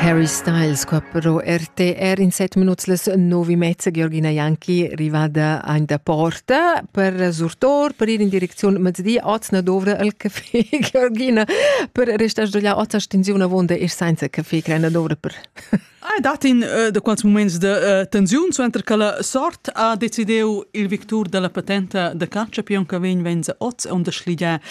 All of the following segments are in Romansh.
Harry Styles qua però RTR in set minuts les novi mezza Georgina Janki rivada ein da porta per surtor per ir in direcziun mezdi oz na dovra el café Georgina per restar sdogliar oz stensiun avonda ir senza café creina dovra per Ai dat in uh, da quals moments de uh, tensiun suenter che la sort ha decidiu il victur della patenta da caccia pion che vegn venza oz on da schligia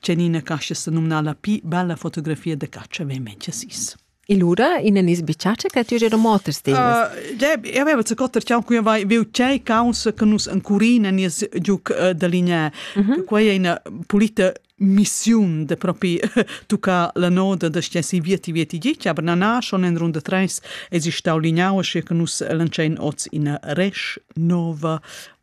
Tgenina cascha sa numna la pli bella fotografia da caccia vemente sis. E lura in anis bicaccia che ti era motors ti. Eu avevo ce cotter ciao qui vai viu cei causa che nus ancurina nies giuc da linea. Quei è una pulita missiun de propi tucca la noda da stessi vieti vieti gici, aber na na schon in runde treis es ich stau lignau che nus lancein oz in resch nova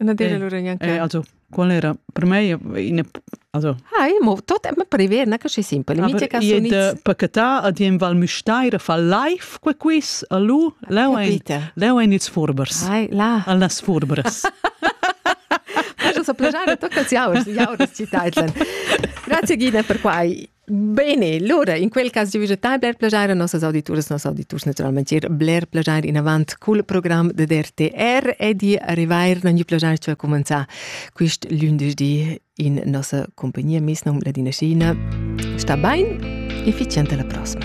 Na dire loro neanche. Eh, also, qual era? Per me in also Ah, io tot è prever, na che si simple. Mi che sono id pacetà ad in val müstaira fa live que quiz a lu leu ein leu ein ils furbers. Ai, la. Al nas furbers. Posso sapere già tutto che si aurs, gli aurs ci Grazie Gina per quai. Bene, lura in quel cas giu tai bler plagiar a nossas auditurs, noss auditurs naturalmente ir bler plagiar in avant cul program de DRTR e di arrivair non gli plagiar ci a commenzar quist lündeschdi in nossa compagnia mes nom Ladina Schina. Sta bain e efficiente la prossima.